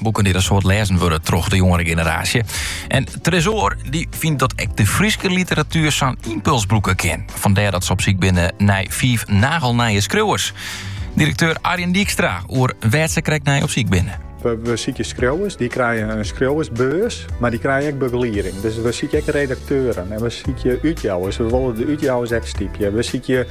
Boeken dy't in soad lêzen wurde troch de jongere generaasje. En Tresoar dy fynt dat ek de Fryske literatuer sa'n impuls brûke kin. Fandêr dat se op syk binne nei fiif nagelnije skriuwers. Direkteur Arjen Dijkstra oer wêr't se krekt nei op syk binne. We, we sykje skriuwers, dy krije in skriuwersbeurs, mar dy krije ek begelieding. Dus we sykje ek redakteuren en we sykje útjouwers. We wolle de útjouwers ek stypje. We sykje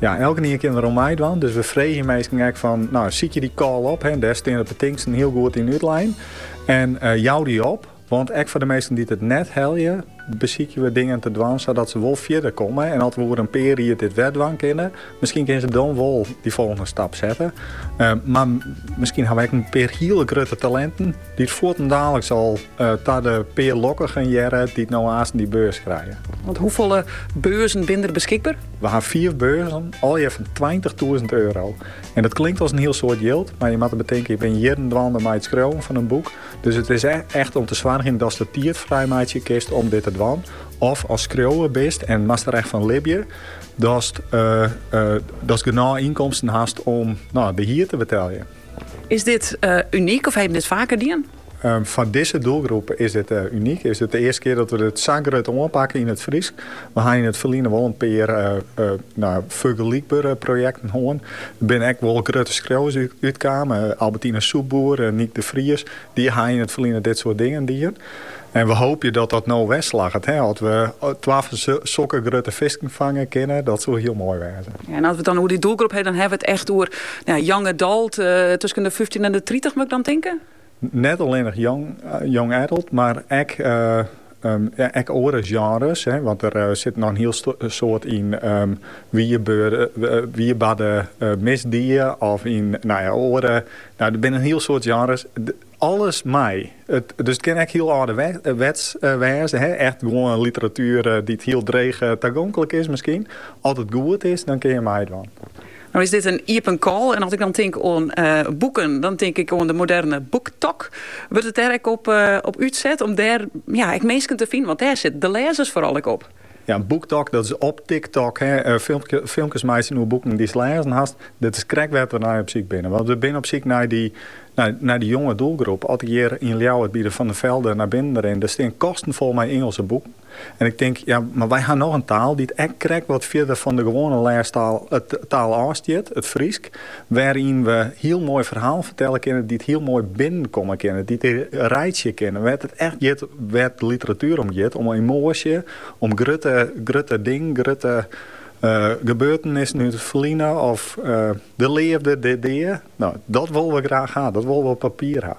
Ja, elkenien kin der oan meidwaan. Dus we freegje minsken ek fan, no, sykje dy call op. Hè, dêr stean de betingsten hiel goed yn útlein. En uh, jou dy op. Want ek foar de minsken dy't it net helje, besykje we dingen te dwaan sadat se wol fierder komme. En as we oer in pear jier dit wer dwaan kinne, miskien kinne se dan wol dy folgjende stap sette. Eh, mar miskien haw we ek in pear hiele grutte talenten Dy't fuortendaliks al ta de pear lokkigen hearre, dy't no aansten dy beurs krije. Want hoefolle beurzen binne der beskikber? We ha fiif beurzen, allegear fan tweintichtûzen euro. En dat klinkt as in hiel soad jild, mar je moatte betinke, je binne jierren dwaande mei it skriuwen fan in boek. Dus it is echt om te soargjen datst de tiid frij meitsje kinst om dit te dwaan. Of ast skriuwer bist en moatst der echt fan libje, datst genôch ynkomsten hast om de hier te beteljen. Is dit unyk of ha je dit faker dien? Foar dizze doelgroep is dit unyk. Is it de earste kear dat we dit sa grut oanpakke yn it Frysk. We ha yn it ferline wol in pear fergelykbere projekten hân. Der binne ek wol grutte skriuwers útkaam. Albertina Soepboer, Nyk de Vries, dy ha yn it ferline dit soart dingen dien. En we hoopje dat dat no wer slagget. As we twa fan sokke grutte fisken fange kinne, dat soe hiel moai wêze. Ja, en as we it dan oer dy doelgroep hawwe, dan hawwe we it echt oer ja, young adult, uh, tusken de 15 en de 30 moat ik dan tinke? Net allinnich young, eh, young adult, mar ek, uh, um, ek oare sjenres. Hè, want der uh, sit noch in hiel soad yn um, wierbarde uh, misdied of yn no ja, oare. No, der binne in hiel soad sjenres. Alles mei. Dus it kin ek hiel âlderwets wêze, echt gewoan literatuer dy't hiel dreech tagonklik is miskien. As it goed is, dan kin je meidwaan. No is dit in iepen call en as ik dan tink oan boeken, dan tink ik oan de moderne BookTok. Wurdt it dêr ek op útset om dêr ek minsken te finen, want dêr sitte de lêzers foaral ek op? Ja, BookTok, dat is op TikTok, hè, filmkes meitsjen oer boeken dy'tst lêzen hast. Dat is krekt wêr't we nei op syk binne. Want we binne op syk nei dy, nei dy jonge doelgroep. As ik hjir yn Ljouwert by de Van der Velde nei binnen rin, dêr stean kasten fol mei Ingelske boeken. En ik tink, ja, mar wy ha noch in taal dy't ek krekt wat fierder fan de gewoane lêstaal, taal, ôfstiet, it Frysk. Wêryn't we hiel moai ferhalen fertelle kinne, dy't hiel moai binnenkomme kinne, dy't reitsje kinne wêr't it echt giet, wêr't literatuer om giet, om emoasje, om grutte, grutte dingen, grutte gebeurtenissen út it ferline of de leafde, de dea. No, dat wolle we graach ha, dat wolle we op papier ha.